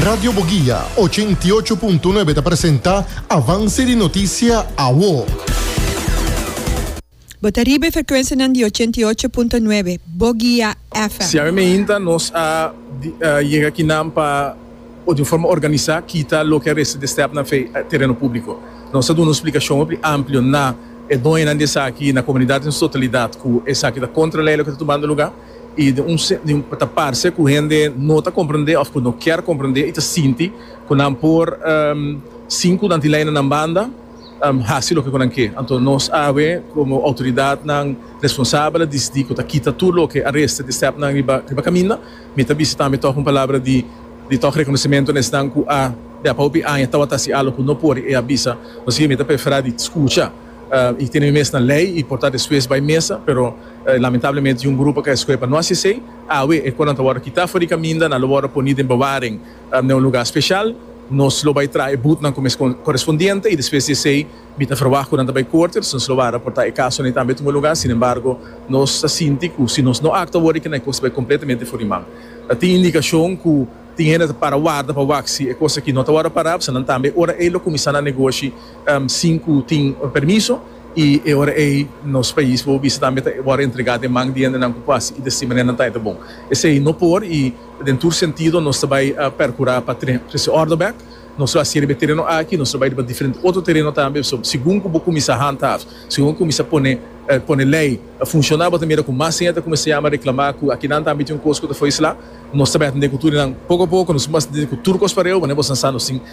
Radio Boguia, ochenta i ocho punto nuebe ta presenta Avance di Noticia Awo. Bo ta riba e frecuencianan di ochenta i ocho punto nuebe Boguia FM. Siara Meinta, Nos a yega akinan pa por di un forma organisa kita loke a resta di e stèpnan afe e tereno públiko. Nos a duna un splikashon hopi amplio na e doñonan di esaki i na komunidat den su totalidat ku esaki ta kontra lei loke ta tumando lugá. i den un sentido ta parse ku hende no ta komprendé òf ku no kier komprendé i ta sinti ku nan por sin ku nan tin lei na nan banda hasi loke ku nan ke. Anto nos awe komo outoridatnan responsabel a disidí ku ta kita tur loke a resta di stèpnan riba kaminda. Mi ta bisa tambe tòg un palabra di tòg rekonosementu na esnan ku a bia pa hopi aña tabata hasi algu ku no por i e a bisa. Nos i mi ta preferá di skucha. I tene mi mes na lei i por ta despues bai mesa, pero lamentablemente tin un grupo ke escohe pa no haci esei. Awe e conan ta wordo kita for di caminda, nan lo wordo poni den bewaring na un lugar special. Nos lo bai traha e boetnan cu mes correspondiente i despues di esei mi ta verwacht cu nan ta bai corte, dus nos lo wara por ta e casonan ei tambe tuma e lugar. Sin embargo nos ta sinti cu si nos no actua awor e cos ta bai completamente for di man. Ta tin indicacion cu tin hende ta para warda pa wak si e cos aki no ta wordo para, pasobra nan tambe ora ei lo cuminsa nan negoshi sin cu tin permiso, y e ora ey nos pais bo bisa tambe ta worde entrega den man di hendenan cu pasa y di asina manera nan ta eta bon. Esey no por y den tur sentido nos ta bay percura pa trece orde bek. Nos lo hacier riba e tereno aki, nos lo bay riba diferente otro tereno tambe, so segun cu bo cuminsa handhaaf, segun cu cuminsa pone pone ley funciona bo ta mira cu mas hende ta cuminsa yama reclama cu akinan tambe tin un cos cu ta fo'i sla. Nos ta bay atende cu tur nan poco a poco nos cuminsa atende cu tur cos pareu manera boso nan sa nos tin